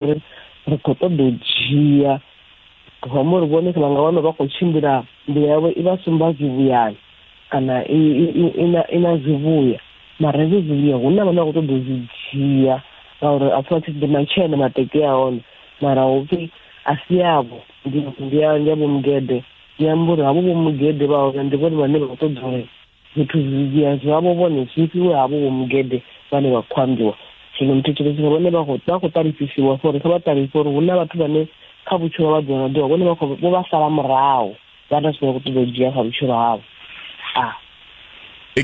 uri ri khou ṱoḓa u dzhia home uri vhone vha nga wana vha khou tshimbila nḓila yavho i vha sumba zwivhuyani kana i na zwivhuya mara hezwo zwivhuya hu na vhane vha khou ṱoḓa u zwi dzhia ngauri a pfha tshi ḓi matshena mateke a hone mara hu pfi a si avho ndi ya ndi ya vhomugede ndi amba uri havho vhomugede vha hone ndi vhone vhane vha khou ṱoḓa uri zwithu zwidzhia zwavho vhone zwi fhiwe havho vho mugede vhane vha khou ambiwa zwino muthetshelesi nga vhone vha khou ṱalusisiwa for uri kha vha ṱalise uri hu na vhathu vhane kha vhutshilo vha ḓola ḓola vhone vho vha sala murahu vha na zwine vha khou ṱoḓa u dzhia kha vhutshilo havho a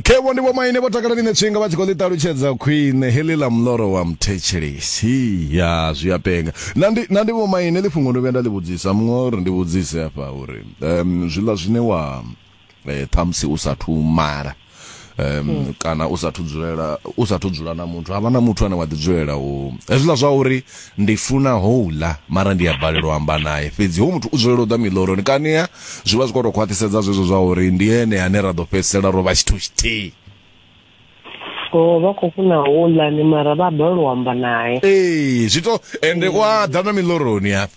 khevho ndi vhomaine vho takala ḽine tshinga vha tshi khou ḽi ṱalutshedza khwine heḽi ḽa muloro wa muthetshelesi ya zwi a penga na ndi na ndi vhomaine ḽi fhungo ndo vhuya nda ḽi vhudzisa muṅwe uri ndi vhudzise hafha uri um zwiḽa zwine wa eh, ṱhamusi u sathu mala um mm. kana u sathu dzulela u sathu dzula na muthu havha na muthu ane wa ḓi dzulela u hezwiḽa zwa uri ndi funa houḽa mara ndi a balelwa amba naye fhedzi ho muthu u dzulela u ḓa miḽoroni kania zwi vha zwi khou tou khwaṱhisedza zwezwo zwa uri ndi ene ane ra ḓo fhedzisela ro vha tshithu tshithihi o vha khou funa houḽani mara vha balelwa amba naye ee zwi to ende u a ḓa na miḽoroni hafha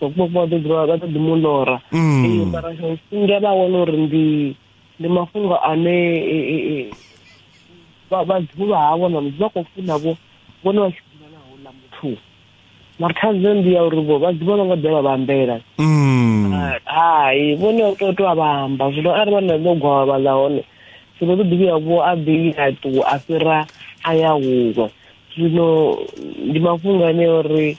vhakuma vha ḓo vha ḓo ḓi mu lora mm. mara singa vha wana uri ndi ndi mafhungo ane e, e, e, vhadzivhulwa havho na mudzi vha khou funa vho vhone vha tshi ḓivha na houḽa muthu mara thaidzo ndi ya uri vho vha ḓivha no nga ḓe vha vhambela mm. ah, hai vhone u tou a vhamba zwino arali vha na ḓo gwavha vhaḽa hone zwino ḓo ḓivhiya vho a ḓi a ṱuwa a fhira a ya huṅwe zwino ndi mafhungo ane uri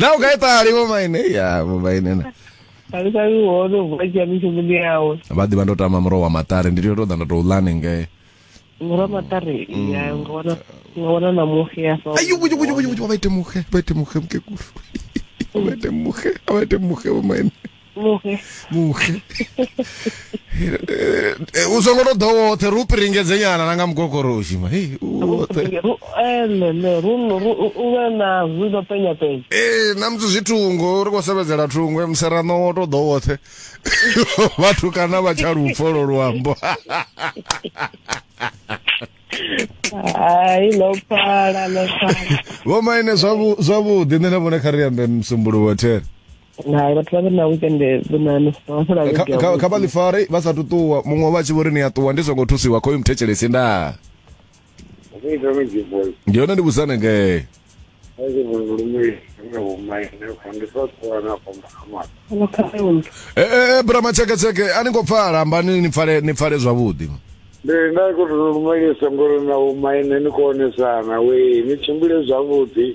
na u ka itali vho maine ya vho maine na ali ka wo no vha ya mishumo ndi yawe vha ḓivha ndo tama muroho wa maṱari ndi tea to ḓa nda to lane ngei muroho wa maṱari mm. ya nga wana nga wana na muxe ya fa ayo kuju kuju kuju vha ite muxe vha ite muxe mkekulu vha ite muxe vha ite muxe vho maine vhuhe vhuhe Eh, eh, u songo to ḓo woṱhe ri u piringedze nyana na nga mugogoroshi ma hei u woṱhe Ru- elele eh, ru- ru- u- u vhe na zwi no penya penya ee na musi zwitungo ri khou sevhedzela thungo eh, muserano wo to ḓo woṱhe vhathu kana vha tsha lupfo lo luambo hai ḽo pfala ḽo pfala vho maine zwavhu- zwavhuḓi nṋe na vhone kha ri ambe musumbuluwo there hai vhathu vha vhe na weekend vhunano kha vha ḽifare vha sa tuṱuwa muṅwe vha tshi vho ri ni a ṱuwa ndi songo thusiwa khoyu muthetshelesi nda ndi hone ndi vhusane ngee ee brama tsheketsheke a ni ngo pfala ambani ni pfale ni pfale zwavhuḓi ndi nda khou lumelisa ngori na vhomaine ni konesana we ni tshimbile zwavhuḓi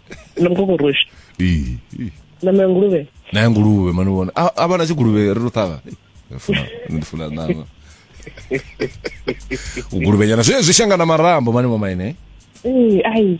na mukokoroshi ee na menguluvhe na nguluvhe mani vona a a vana tshiguluvhe ri ro ṱhavha Ee, funa ndi funa ṋama u guluvhenyana zwi zwi shangana marambo mani mama ine ee ai